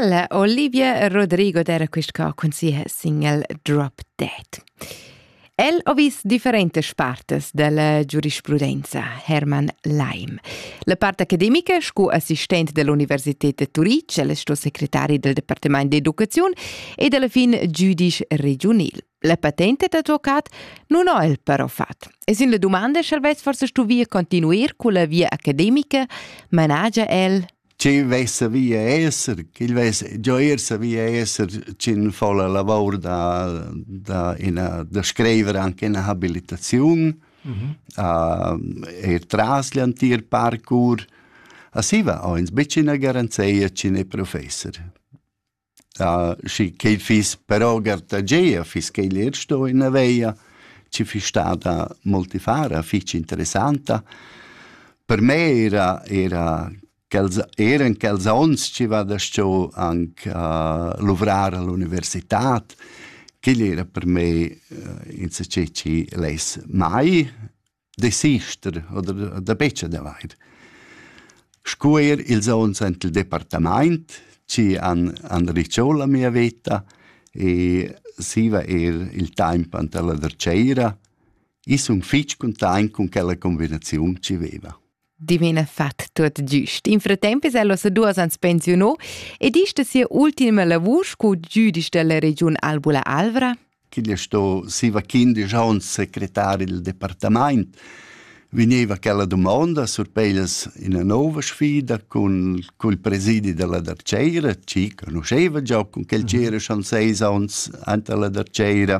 La Olivia Rodrigo d'era quist ca cun sia single Drop Dead. El ho vis differentas partes della giurisprudenza, Hermann Leim. La part academica, sco assistent dell'Universität de Turitg, el sto secretari del Departement d'educaziun e della fin giudice regionil. La patente d'advocat nun ho el però fat. E sin la dumanda sch'el vess forse stuvia continuer culla via academica, managia el Chi vesse via esser, chi vesse gioirse via esser, chin fa la lavor da, da, ina, da scriver anche una habilitazione mhm. uh, e tras l'antier parkour. A siva ho ins becina garanzia chin è professor. schi ch'el fiss però gartagia, fiss quel eir sto in la veia, chi fiss stada multifara, fich interessanta. Per me era era quels eran quels ons chi vada sto anc a luvrar all'università. Quel era per me insachet chi less mai desister oder da betg d'avair. Sco er ils ons en il departament ci han, han ricciò la mia veta e siva er il tempo ante la derceira e sun fitg content con quella combinaziun ci veva. dimena fat tuot giüst. In fratemp es el ossa duos ans pensiunò ed ist sia ultima lavur sco giudisch della regiun Albula Alvra? Ch'igl sto siva quindisch ans secretari del departamaint vegniva quella domanda surpeglias ina nova sfida cun cul presidi della Darceira, ci conosceva già con quel mhm. c'era schon seis ans ante la Darceira.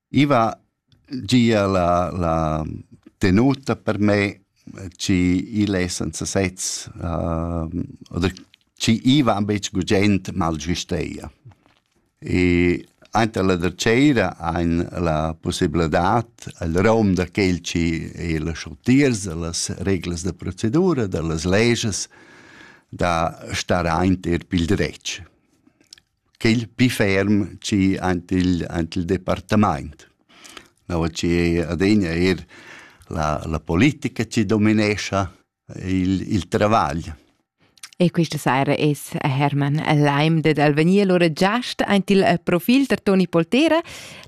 I va gia la, la tenuta per me chi il è senza sezs uh, oder chi i va betg gugent mal giusteia. E anche la derceira ein la possibilità al rom da quel ci e la schottiers, las reglas da procedura, da las leges, da star aint er pil dretg. quel pi ferm chi aint il aint il departamaint. No chi adegna eir la la politica chi dominescha il il travagl. E questa saira es Hermann Leimde dal Venier lura giast aint il profil da Toni Poltera.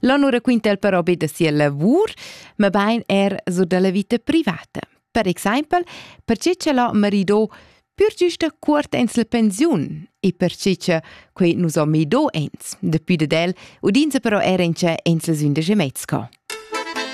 Là nu raquinta el però be da sia lavur, ma bain er so da la vita privata. Per exempel, perche che la marido pür giusta cuort ens la pensiun e perche che quei nus ho mido ens. Dapi dad el udinza però era in cha ens las undisch e mezza.